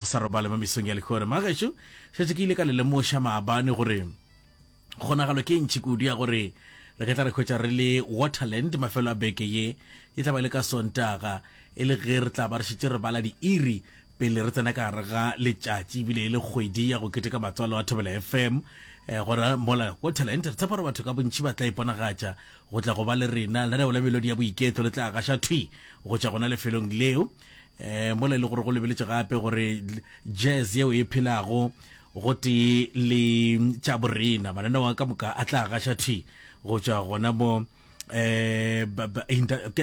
Sa robale mo mesong ya legore, magaešo, šetše ke ile ka le lemoša maabane gore kgonagalo ke e ntši kudu ya gore re ke tla re hwetša re le Waterland mafelo a beke ye, e tla ba le ka Sontaga, e le ge re tla ba re šetše re bala diiri pele re tsena ka gare ga letšatši ebile e le kgwedi ya go keteka matswalo a Thobela FM. Eh, gona mola Waterland re tshepa gore batho ka bontši ba tla iponagatša go tla go ba le rena. Lenaneo la melodi ya boiketlo le tla gaša thwi go tšwa gona lefelong leo. um mola e le gore go lebeletše gape gore jazz yeo e phelago go tee le tša borena mananeo a ka moka a tla gaša thi go tšwa gona mo eh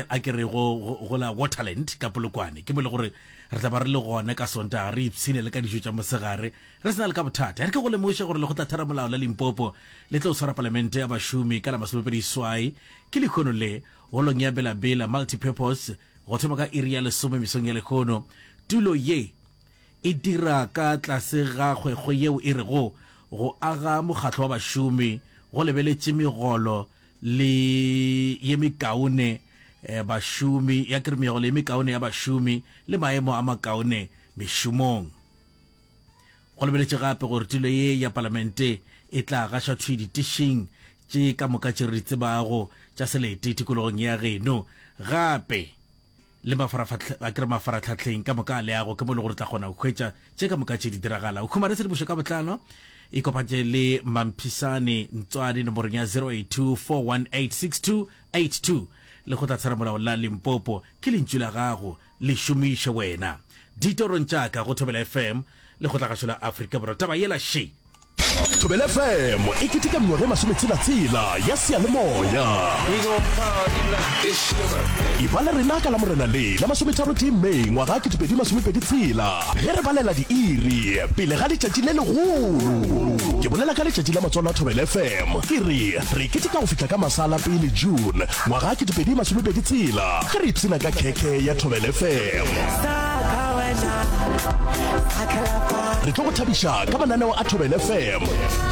a ke re go go la waterland ka polokwane ke bole gore re tla ba re le gona ka sontaga re ipshine le ka dijo tša mosegare re sena le ka bothata re ke go lemoše gore le go tla thera molao la limpopo le tlo tshwara palamente ya bašomi ka la masomepedi swai ke lekgono le holong ya belabela multipurpose Go thoma ka iri ya lesome mesong ya lehono, tulo ye e dira ka tlase ga kgwekgwe yeo e rego Go Aga Mokgatlo wa Bašomi go lebeletše megolo le ye mekaone ya bašomi ya ke re megolo ye mekaone ya bašomi le maemo a makaone mešomong. Go lebeletše gape gore tulo ye ya palamente e tla gaša thwi ditešeng tše ka moka tše re di tsebago tša selete tikologong ya geno, gape le mafaratlhatlheng ka moka a leago, ke mo e lego re tla kgona go hwetša tše ka moka tše di diragala. O khumare tshedimošo ka botlalo, ikopantše le Mamphisane Ntswani nomorong ya 082 418 6282. Lekgotlatheramolao la Limpopo ke lentšu la gago. Le šomiše wena. Ditorong tša ka go Thobela FM, lekgotlagašo la Afrika Borwa. Taba yela še! Thobela FM e keteka mengwaga e masometshela-tshela ya seyalemoya. Eba le rena ka Lamorena le la masometharotee Mei ngwaga ketepedi masomepedi tshela ge re balela diiri pele ga letšatši le legolo. Ke bolela ka letšatši la matswalo a Thobela FM. Ke re re keteka go fihla ka masala pele June Ngwaga ke dipedi masome pedi tshela ge re ipshina ka khekhe ya Thobel FM. Re tlo go thabiša ka mananeo a Thobel FM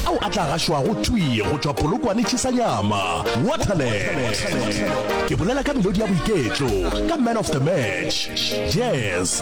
ao a tla gašwago thwi go tšwa Polokwane Chisanyama, Waterland. Ke bolela ka melodi ya boiketlo ka Man of the Match, Jazz,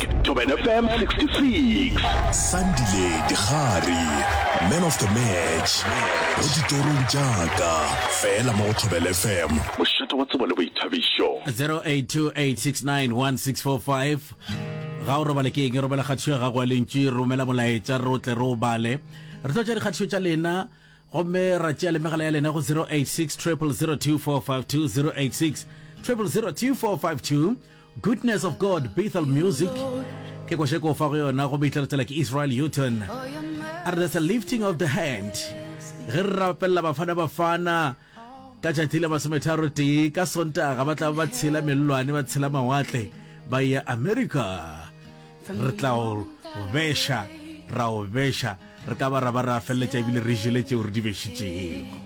Thobela FM 66. Sandile Digare, Man of the Match, mo ditorong tša ka, fela mo go Thobela FM. Mošate wa tsebo le boithabišo. 0828691645 ga o robale ke eng robela kgatišo ya gago ya lentši romela molaetša re o tle re o bale re tlo tša dikgatišo tša lena gomme ra tšea le megala ya lena go 086 0002452 086 0002452 Goodness of God Bethel Music ke ko šeko fa go yona go Bethel tsela ke Israel Houghton a re there's a lifting of the hand ge re rapelela Bafana Bafana ka tšatši la masometharo tee ka Sontaga ba tla ba tshela mellwane ba tshela mawatle ba ya America re tla o beša ra o beša re ka ba ra ba ra feleletša ebile re jele tšeo re di bešitšego